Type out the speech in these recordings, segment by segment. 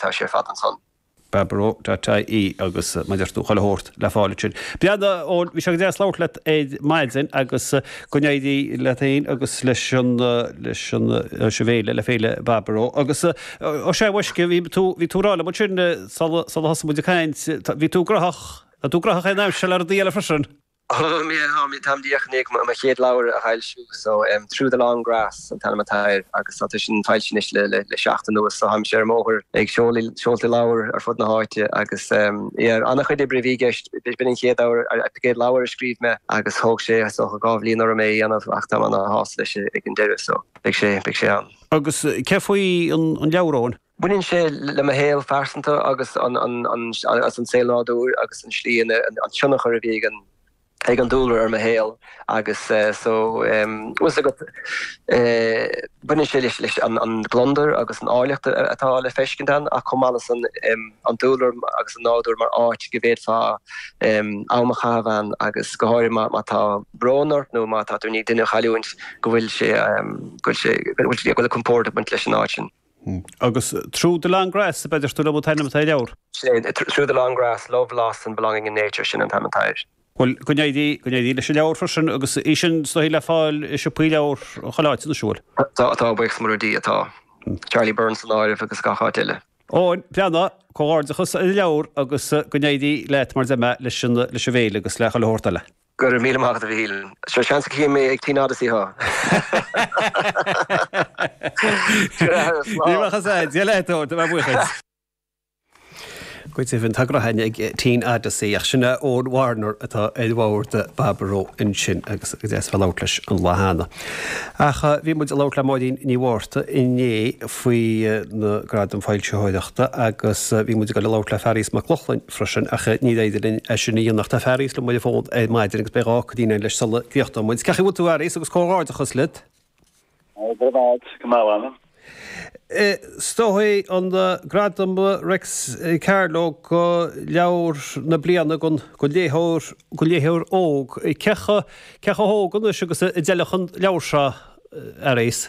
tá sé ar fad ansan. Baboró.ie Agus mar a deir tú chuile shórt le fáil ansin. Bhuel Eoin, bhí sé go deas labhairt leat ar maidin agus go n-éirí leat fhéin agus leis an, leis an, leis an bhféile, le Féile Baboró. Agus Ó sea a mhaisce, bhí tú, bhí tú ag rá liom ansin sula, sula thosaigh muid ag caint, bhí tú graitheach, tá tú graitheach an aimsir seo le rudaí eile freisin? Ó, mé, tá mé, táim díreach i ndiaidh mo chéad leabhar a fhoilsiú so em Through the Long Grass an t-ainm atá air agus tá tá sin foilsithe anois le le le seachtain anuas so táimse ar an mbóthar ag seoladh seolta leabhar ar fud na háite agus em yeah an-chuid oibre a bhí i gceist, b'in b'in an chéad leabhar a an chéad leabhar a scríobh mé agus thóg sé is dócha dhá bhliain orm é a dhéanamh ach táim ana shásta leis ag an deireadh so beidh sé beidh sé ann. Agus céard faoi an an leabhar Eoin? Baineann sé le mo shaol phearsanta agus an saol nádúir agus an tslí ina, an tionchar a bhí ag an dúlra ar mo shaol agus so bhfuil 's agat baineann sé leis an gliondar agus an áilleacht atá le feiscint ann ach chomh maith leis sin an dúlra agus an nádúr mar áit go bhféadfá am a chaitheamh ann agus go háirithe má tá brón ort nó má tá tú i ndiaidh duine a chailliúint go bhfuil sé, go bhfuil sé, go bhfuil compord ag baint leis an áit sin. Agus Through the Long Grass, ab ea a deir tú liom an t-ainm atá ar an leabhar? Sin é, Through the Long Grass, Love, Loss and Belonging in Nature, sin an t-ainm atá air. Bhuel, go n-éirí, go n-éirí leis an leabhar freisin, agus í sin is dóichí le fáil i siopaí leabhar chuile áit, anois, an bhfuil? Tá, atá, buíochas mór le Dia, atá. Charlie Byrne san áireamh agus gach áit eile. Eoin, Breanndán, comhghairdeachas ar an leabhar agus go n-éirí leat mar a deir mé leis an, leis an bhféile agus le chuile shórt eile. Go raibh míle maith agat a Mhichíl. Seo seans go gcífidh mé ag Teen Odyssey thú! Ní bheadh a fhios Dia leat ó, tá mé buíochas. Goitse bhí an togra thine ag Teen Odyssey ach sin Eoin Warner atá ar bhord Baboró ansin agus go deas bheith labhairt leis an lá cheana. Ach bhí muid ag labhairt le Máirín Ní Mhárta inné faoi na gradaim foilsitheoireachta agus bhí muid ag dul ag labhairt le Fearghas Mac Lochlainn freisin ach níorbh fhéidir linn é sin a dhéanamh ach tá Fearghas linn ar an bhfón ar maidin agus beidh deis cainte againn leis sula gcríochnóidh muid. Cén chaoi a bhfuil tú a Fhearghais agus comhghairdeachas leat. Ó go raibh maith agat. Is tú a bhuaigh an Gradam Réics Carló do Leabhar na Bliana don léitheoir don léitheoir óg. Cé chomh cé chomh hóg anois agus a d'fheilfeadh an leabhar seo a Fhearghais?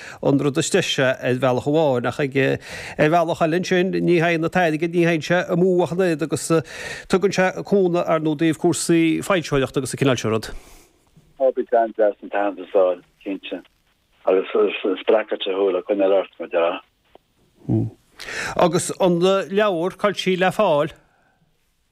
an rud is deise ar bhealach amháin, ach ag ar bhealach eile ansin ní théann an t-airgead, ní théann sé amú ach an oiread agus tugann sé cúnamh ar ndóigh ó thaobh cúrsaí foilsitheoireachta agus an cineál sin rud. Tá sé go deas an t-aitheantas a fháil, cinnte, agus spreagfadh sé thú le coinneáil ort, mar a déarfá. Agus an leabhar, cá bhfuil sí le fáil?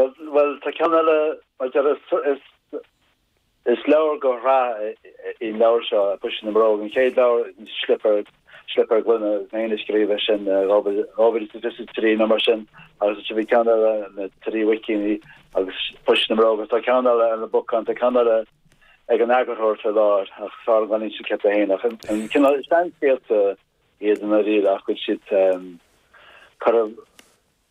Bhuel, tá ceann eile, mar deir is is leabhar de shraith í an leabhar seo, Puisín na mBróg, an chéad leabhar Slipéar Gloine a scríobh é sin, 2023 nó mar sin, agus ansin bhí ceann eile, na Trí Mhuicín agus Puisín na mBróg, agus tá ceann eile ar na bacáin, tá ceann eile ag an eagarthóir faoi láthair, ach is fearr an gcoinín sin ceaptha féin, ach an cineál seanscéalta iad i ndáiríre ach go bhfuil siad curtha.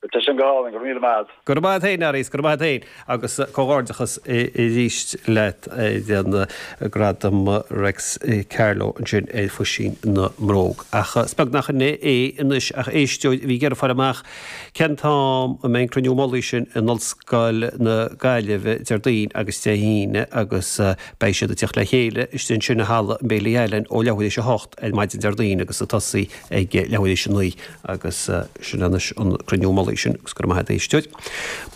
Tá sé sin go hálainn, go raibh míle maith a't. Go raibh maith a't fhéin arís, go raibh maith a't fhéin agus comhghairdeachas arís leat ar an nGradam Réics Carló ansin ar Phuisín na mBróg. Ach 's beag nach in é é anois ach éisteoir a bhí ag iarraidh fáil amach cén t-am a mbeidh an Cruinniú Mullaigh sin in Ollscoil na Gaillimhe, Déardaoin agus Dé hAoine agus beidh siad ag teacht le chéile istigh ansin i Halla an Bailey Allen ó leathuair éis a hocht ar maidin Déardaoin agus ag tosaí ag leathuair éis a naoi. Agus sin anois an Cruinniú Mullaigh sin agus go raibh maith agat a éisteoir.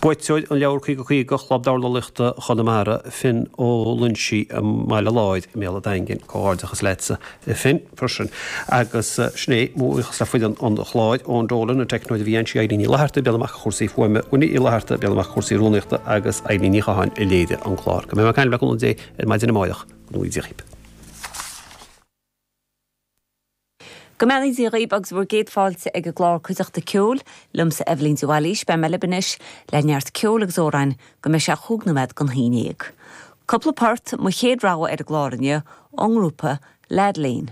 Buaiteoir an leabhar 50 50 Chlub Dornálaíochta Chonamara, Finn Ó Loinsigh i mBaile Láir i mBéal a' Daingin. Comhghairdeachas leatsa a Finn. Freisin agus sin é, mo bhuíochas le foireann an chláir, Eoin Dolan, an teicneoir a bhí anseo, Eilín Ní Fhlaithearta, ag breathnú amach do chúrsaí fuaime, Winnie Uí Fhlaithearta, ag breathnú amach do chúrsaí rúnaíochta agus Eibhlín Ní Chatháin a léirigh an clár. Go mbeidh mé ag caint le cúnamh Dé ar maidin amáireach. Go ngnóthaí Dia dhíbh. Go mbeannaí Dia dhaoibh agus bhur gcéad fáilte ag an gclár Cuideachta Ceoil. Liomsa Eibhlín de Bhailís. Beidh mé libh anois le neart ceoil agus amhráin go mbeidh sé chúig nóiméad don haon déag. Cúpla port, mo chéad rogha ar an gclár inniu, ón ngrúpa Ladlane.